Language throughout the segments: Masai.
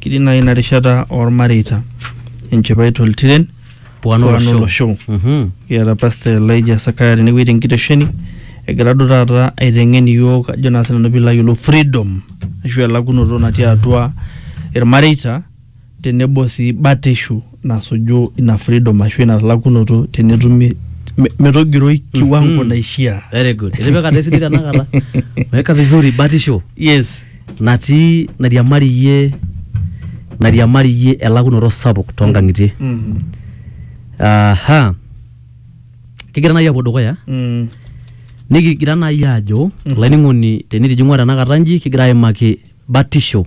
kiti nai ina rishata ormareita enchipai toltiren Puano Puano Losho. Losho. Mhm. kiata pastor Elijah Sakaya tenewueji tenkitesheni egira duo taata aiteng'en iyiook ajo naa sinanu piilo ayiolou freedom ashu elakunoto natii atua irmareita tenebo sii batishu nasuju ina freedom ashu ina talakunoto tenetumi me- metogiroi kiwango naishiaa very good itipikata esidai tenakata weka vizuri batisho yes natii nairiamariyie nairiamariyie elakunoto sapuk toonkang'itie mm. aha kigira naaji apuo dukuya Mm. nikigira naaji aajo olainining'oni tenitijing'ua tenakata nji kigira aimaki batisho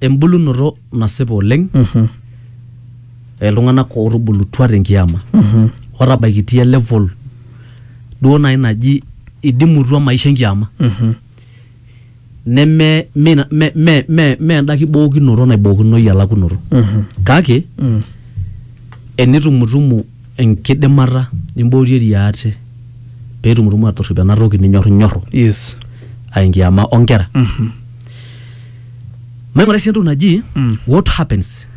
embulunoto nasipa oleng Mhm. iltung'anak ootubulutua tenkiyama Mhm. otabaikitia level duo naaji naji idimutua maisha enkiyama Mhm. neme me, me, me, me, me enda kibookinoto naibookinoyu elakunoto Mhm. kake Mm. enitumutumu enkidimata nimboorie eria ate pee itumutumu aatorrip ena toki ninyorrinyorru yes aa enkiama oonkera. Maing'urai sii entoki naji Mm. what happens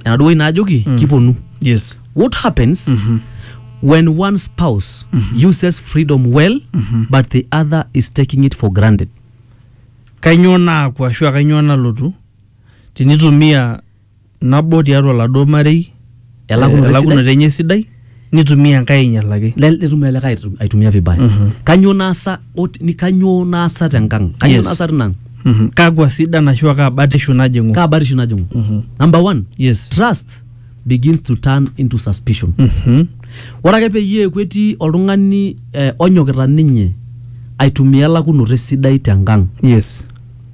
enaduo wueji naajoki kiponu. yes What happens when one spouse uses freedom well but the other is taking it for granted? kainyoo naaku ashua kainyoo nalotu tinitumia nabo tiatua oladuo marei eh, Elakunoto esidai. elakunoto enye sidai nitumia enkae ainyalaki Le- netum ele likae aitu- aitumia vibaya Mhm. kanyoo naasa ot- ni- kanyoo naasa tenkang kanyoo Yes. naasa tinang Mhm. kakwa sidan ashu kaa batishu najing'u kaa batishu najing'u Mhm. number one yes trust begins to turn into suspicion Mhm. ore ake peyie eeku etii oltung'ani eh, onyokita ninye aitumia elakunoto esidai tenkang yes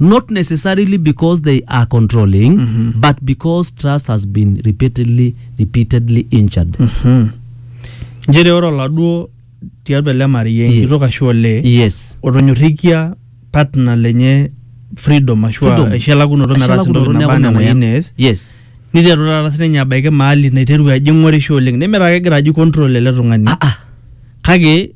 not necessarily because they are controlling but because trust has been repeatedly repeatedly injured nchere ore oladuo tiatua ele marei Ye- enkitok ashu olee yes otonyorrikia partner lenye freedom ashu Freedom. aisho elakunoto metaasa Eshalakunoto entoki neeku naba anaa memuoyan. enayieu nees yes niteru taata sininye abaiki maali naiteru ajing'orisho oleng nemetaa kegira aji control ele tung'ani ah ah kake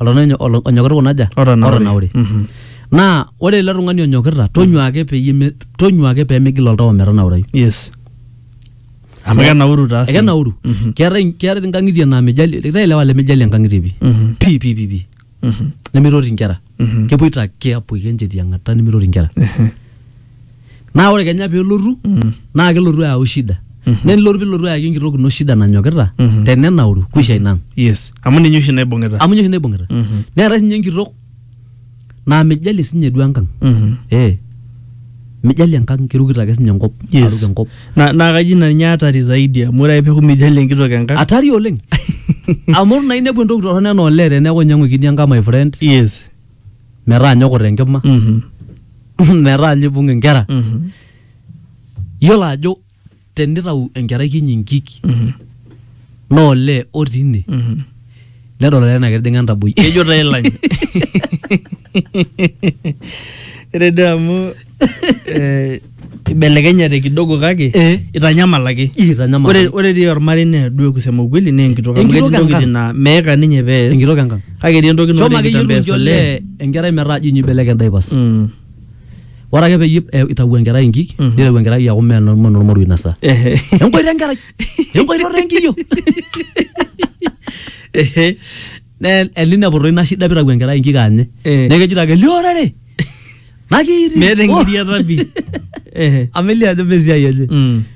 oltung'ani onyo- onyokita kuna aja Otanaure. otanaure Mhm. naa ore ele tung'ani onyokita tonyua ake peyie me- tonyua ake pemigil oltau ometanaurai yes amu kenauru taa sii. ekenauru Mhm. keetae keetae nkang'itie naa mijali keetae ilewa lemijali enkang'itie pi Mhm. pi pi pi pi Mhm. nemeitoti nkera kepoito ake apoiki enchetiang'ata nimirorie inkera naa ore kenya pelotu naa kelotu ayau shida naa enilotu pilotu ayaki enkitok ino shida nanyokita Mhm. tenenauru kuisha inang yes amu ninye oshi naibung'ita amu ninye oshi naibung'ita Mhm. neetae sinye enkitok naa mijalie sinye duo enkang Mhm. eh mijalie enkang kirukito ake sinye enkop Yes. aruk enkop na na kaji ina ninye hatari zaidi amu ore ake peeku mijali enkitok enkang atari oleng amu ore naa inepu entoki torrono enaa olee teneeku inyiang'uikini enkang my friend yes metaa nyoko tenkima mhm metaa ninye ibung inkera mhm yiolo ajo tenitau enkerai kinyi nkik naa olee otii ine nedol olee naa ketijing'a entaboi kejo taa ilany ore duo amu eh, ibelekenyate kidogo kake Eh. itanyamal ake Ih, itanyamal. ore ore dii ormarei naa duo kusema ukweli naa enkitok amu Enkitok ketii ntokitin enkang. naa meeka ninye pees enkitok enkang kake etii entoki shomo ake yie nikitambees irunji olee olee enkerai metaa jinyi ibelekeny daipas Mm. ore ake peyie eh, itau enkerai inkik nitau enkerai aku mee eno- mee enormoruo inasa Ehe. enkoito enkerai enkoito enkiyo Ehe. Ne- elineputo ina shida pitau enkerai inkik anye Eh. neeku ejito ake liorere nakiiti meeta engiriata pi Ehe. amelia ajo mesiai enye Mm.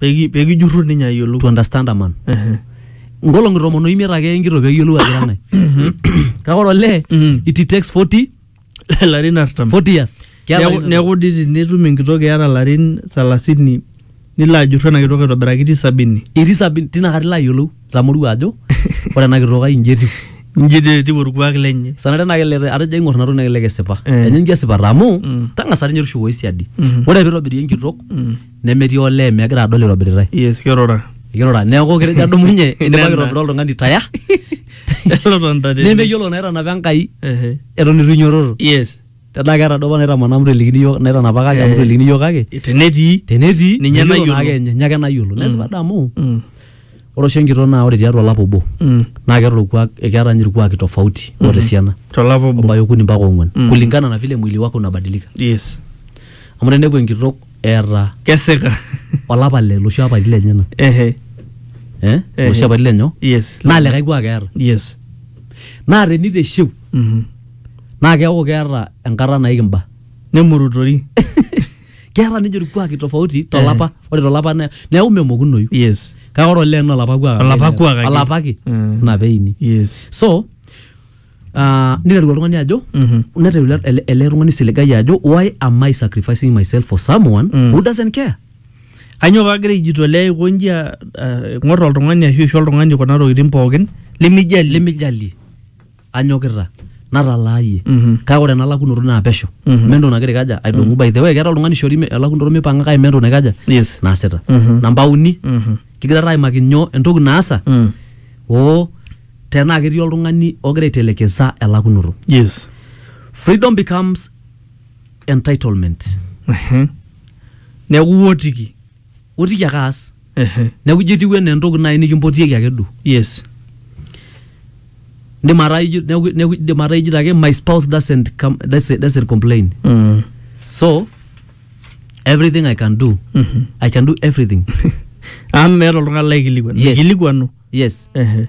Peki- pekijurru ninye ayiolou to understand a man Ehe. nkolong'i tomon oimiet ake eya enkitok peyiolou ajo kang'ae kake ore olee Mhm. it takes 40 ilarin artam 40 years Keeta Neeku- ina- neeku di tinitum enkitok eata larin salasini nilo ajurru ena kitok aitobiraki ti sabini itii sabini tina kata ilo ayiolou itamorua ajo ore ena kitok ai inji etiu nji te- etiu orkuak lenye sanare naa kelelek atejo aing'or ina toki naa kelelek esipa Eh. enye inji esipata amu Mm. tang'asa ninye tushukoyu siadi Mhm. ore piitobiri enkitok Mm. nemetii olee megira adol itobiritai yes kirura kirura neeku ketejo adumunye idipaki Nena. aitobira oltung'ani taya elotonta tene nemeyiolo naitanapa enkai Ehe. eton itu inyototo yes tenaa keeta duo apa naitamana amu telikini yiok naitanapa kake amu Eh. telikini yiok kake tenetii tenetii Ninye meyiolo nayiolo. naake enye, ninye ake nayiolo nesipa adamu Mm. Ore oshi enkitok naa ore tiatua olapa obo Mm. naa keeta orkuak keeta ninye irkuaki tofauti oota esiana Tolapa obo. obaya okuni mpaka ong'uan Mm. kulingana na vile mwili wake unabadilika Yes. amu teneku enkitok eeta Keseka. olapa le loshi apaitin lenyena Ehe. eh? Ehe. loshi apaitin lenyo Yes. naa likae kuak eeta Yes. naa teniteshiu Mhm. naa keeku keeta enkata naiki mba Nemurutori. keeta ninche irkuaki tofauti tolapa ore tolapa ne- neeku memokunoyu yes kake ore olee naa olapa kuak ake Olapa ina- kuak ake. olapa ake Mm. ina peini yes so uh, niteru oltung'ani ajo Mhm. neteru ele- ele ele tung'ani siligai ajo why am i sacrificing myself for someone Mm. who doesn't care kanyoo paagira aijitolea aiko nji a- a- ing'or oltung'ani ashu aisho oltung'ani kuna tokitin pookin limijali limijalie anyokita natalaayie Mhm. kake ore ena lakunoto naa pesho Mhm. mme entoki nagira aikaja aidong'u by the way keeta oltung'ani ishori me- elakunoto mipanga kake mme entoki naikaja yes naasita Mhm. namba uni Mhm. kigira taa aimaki nyoo entoki naasa Mm. oo tenaa ketii oltung'ani ogira aitelekesa elakunoto yes freedom becomes entitlement Ehe. neeku iwotiki otiki ake aas Ehe. neeku ijo etiu enaa entoki naaji nikimpotieki ake duo yes indim ataa ijo neeku neeku indim ataa ijito ake my spouse doesn't come doesn't, doesn't complain Mm. so everything i can do Mhm. i can do everything amu meeta oltung'ani laikilikuan Yes. mikilikuanu yes Ehe.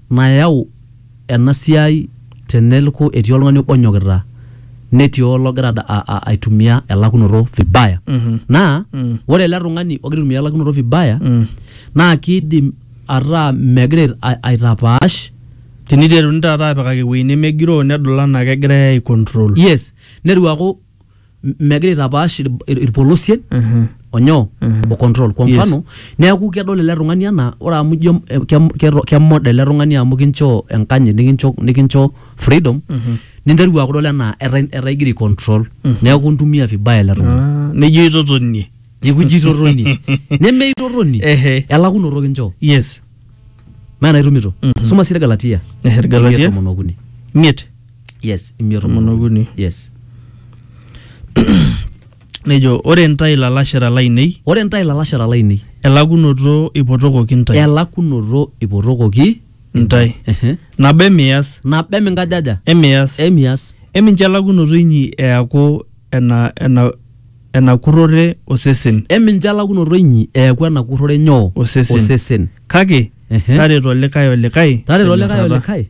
nayau ena siai tenelku etii oltung'ani obo onyokita netii ologira ad- a- a- aitumia elakunoto vibaya Mhm. naa Mm. ore ele tung'ani ogira aitumia elakunoto vibaya Mm. naa kiidim ataa megira ait- a- aitapaash teniteruni taata apikaki ewueji nemegiroo nedol anaa kegirae ai control yes netu aaku m- megira aitapaash ir- ir- irpolosien Mhm. onyoo Mhm. o control kwa Yes. mfano neeku kedol ele tung'ani anaa ore amu ijo eh, kem- keto- kemoda ele tung'ani amu kinchoo enkanyit nikincho nikincho freedom Mhm. ninteru akudol enaa etaa etaa igira control Mhm. neeku intumia vibaya ele tung'ani Ah, nejo itotonie nikuji itotoni nemeitotoni Ehe. elakunoto kinchoo yes meena itumito Mhm. suma sii irgalatia Ehe, Irgalatia. imiet tomon okuni miet yes imiet Tomon okuni. yes nejo ore ntae ilalashera lainei ore ntae ilalashera lainei elakunoto ipotokoki ntae elakunoto ipotokoki ntae Ehe. nabo emiyas nabo eminkajaja emiyas emias emincho elakunoto inyi eaku ena ena enakurrore osesen emincho elakunoto inyi eeku enakurrore nyoo Osesen. osesen kake Ehe. tareto likae olikae tareto likae tenyorrata. olikae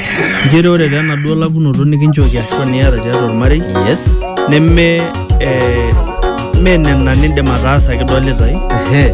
Nchere ore taa enaduo lakunoto nikinchooki ashu niata tiatua ormarei yes neme eh, mee nena nindim ataasa kidolitae ehe